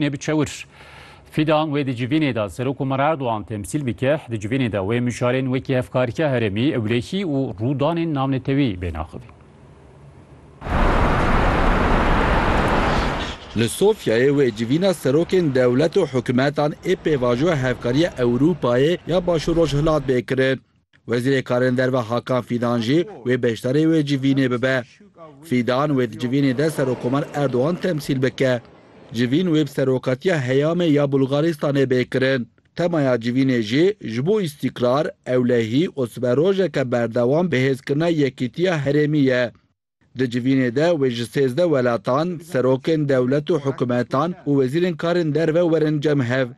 Nê bi çewir. Fidan wê di civînê de Serok Omer Erdogan temsîl bike, di civînê de wê mijarên wekî hevkarîtiya herêmî, ewlehî û rûdanên navnetewî bên axivîn. Li Sofyayê wê civîna serokên dewlet û hikûmetan ê pêvajoya hevkariya Ewrûpayê ya Başûr-Rojhilat bê kirin. Wezîrê Karên Derve Hakan Fîdan jî wê beşdarê wê civînê bibe. Fîdan wê di civînê de Serokkomar Erdogan temsîl bike. Civîn wê bi Serokatiya Heyamê ya Bulgaristanê bê kirin. Temaya civînê jî ji bo îstîkrar, ewlehî û sibe rojeke berdewam bihêzkirina yekîtiya herêmî ye. Di civînê de wê ji sêzdeh welatan, serokên dewlet û hikumetan û wezîrên karên derve werin cem hev.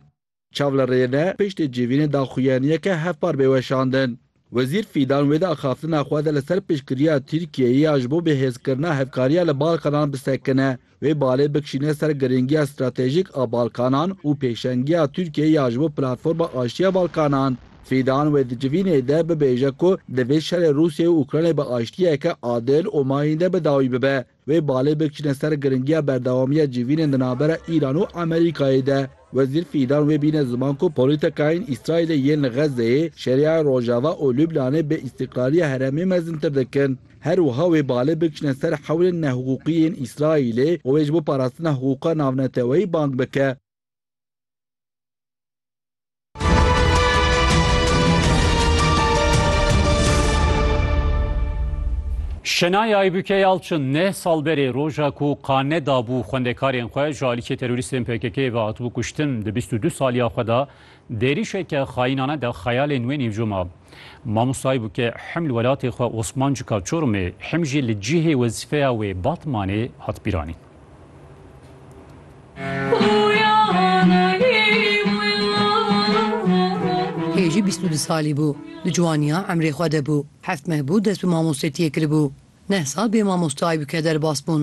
Çav li rê ne, piştê civînê daxuyaniyeke hevpar bê weşandin. Wezîr Fîdan wê de axaftina xwe de li ser piştgiriya Tirkiyeyê ya ji bo bihêzkirina hevkariya li Balkanan bisekine, wê balê bikişîne ser girîngiya stratejîk a Balkanan û pêşengiya Tirkiyeyê ya ji bo Platforma Aştiya Balkanan. Fîdan wê di civînê de bibêje ku divê şerê Rûsyayê û Ukraynayê bi aştiyeke adil û mayînde bi dawî bibe. Wê balê bikişîne ser girîngiya berdewamiya civînên di navbera Îran û Amerîkayê de. Wezîr Fîdan wê bîne ziman ku polîtekayên Îsraîlê yên li Xezzeyê, Şeriaya Rojava û Lubnanê bê îstîqlaliya herêmê mezintir dikin. Her wiha wê balê bikişîne ser hewlên nehiqûqî yên Îsraîlê û wê ji bo parastina hiqûqa navneteweyî bang bike. Şenaya Aybüke Yalçın ne sal berê roja ku qane dabû xwendekarên xwe ji alîkê terorîstên PKK'ê ve hatibû kuştin di 22 saliya xwe de dêrîşeke xayînane de xeyalên wê nîvco ma. Mamosta Aybüke him li welatê xwe Osmancika Çorumê him jî li cihê wezîfeya wê Batmanê hat bîranîn. Hêjî bîst û du salî bû. Di ciwaniya emrê xwe de bû. Heft meh bû dest bi mamostetiyê kiribû. Neh sal bê mamoste Aybûke derbas bûn.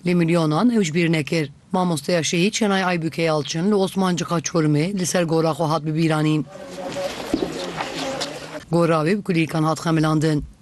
Lê milyonan ew ji bîr nekir. Mamosteya şehîd Şenay Aybûke Yalçin li Osmancika Çorumê li ser gora xwe hat bibîranîn. Gora wê bi kulîlkan hat xemilandin.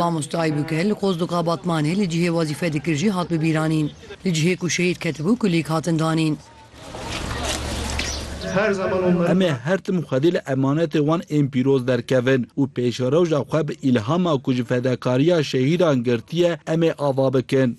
Mamostayê bû ke li Qozduqa Batmanê li cihê wezîfe dikir jî hat bibîranîn. Li cihê ku şehîd ketibû kulîk hatin danîn. Em ê her tim xwedî li emanetê wan ên pîroz derkevin û pêşerewja xwe bi îlhama ku ji fedekariya şehîdan girtiye em ê ava bikin.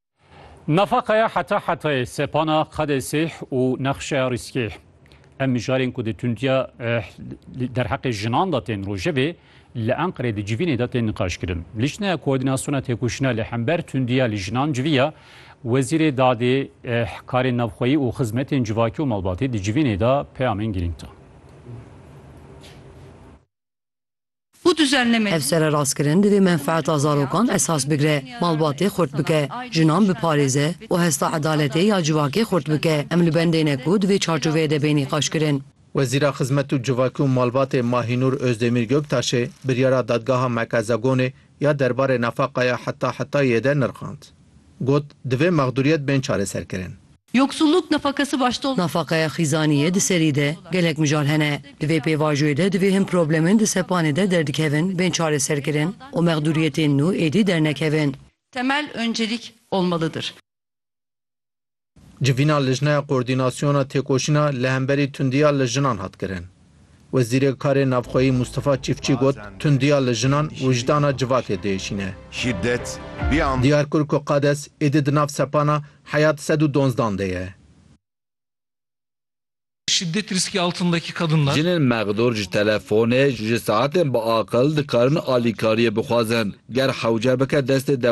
Nafaqeya heta hetayê sepana qadê sêh û nexşeya rîskgeh. Em mijarên ku di tundiya derheqê jinan de tên rojevê li Enqerê di civînê de tên niqaşkirin. Lijneya Koordînasyona Têkoşîna li hember tundiya li jinan civiya Wezîrê Dadê, Karên Navxweyî û Xizmetên Civakî û Malbatî di civînê de peyamên girîng da. û duzernemê. Ev sererastkirin divê menfeeta zarokan esas bigre, malbatê xurt bike, jinan biparêze û hesta edaletê ya civakê xurt bike. Em li bendê ne ku di vê çarçoveyê de bê nîqaşkirin. Wezîra Xizmet û Civakî û Malbatê Mahînûr Ozdemîr Göktaşê biryara Dadgeha Merkeza Gonê ya derbarê nefaqaya heta hetayê de nirxand. Got, Divê mexdûriyet bên çareserkirin. Yoksulluk nefakesi başto. Nefaqeya xîzaniyê di serî de gelek mijal hene. Di vê pêvajoyê de divê hin problemên di sepanê de derdikevin bên çareserkirin û mexdûriyetên nû êdî dernekevin. Temel öncelik olmalıdır. Civîna Lijneya Koordînasyona Têkoşîna li hemberî tundiya li jinan hat kirin. Wezîrê Karê Navxweyî Mûstefa Çîfçî got, Tundiya li jinan wijdana civakê diêşîne. Şîdet, bî am. Diyar kir ku qades êdî di nav sepana Heyat sed û donzdan de ye. Şiddet riski altındaki kadınlar. Jinên mexdûr ji telefonê ji saetên biaqil dikarin alîkariyê bixwazin. Ger hewce bike destê dewletê.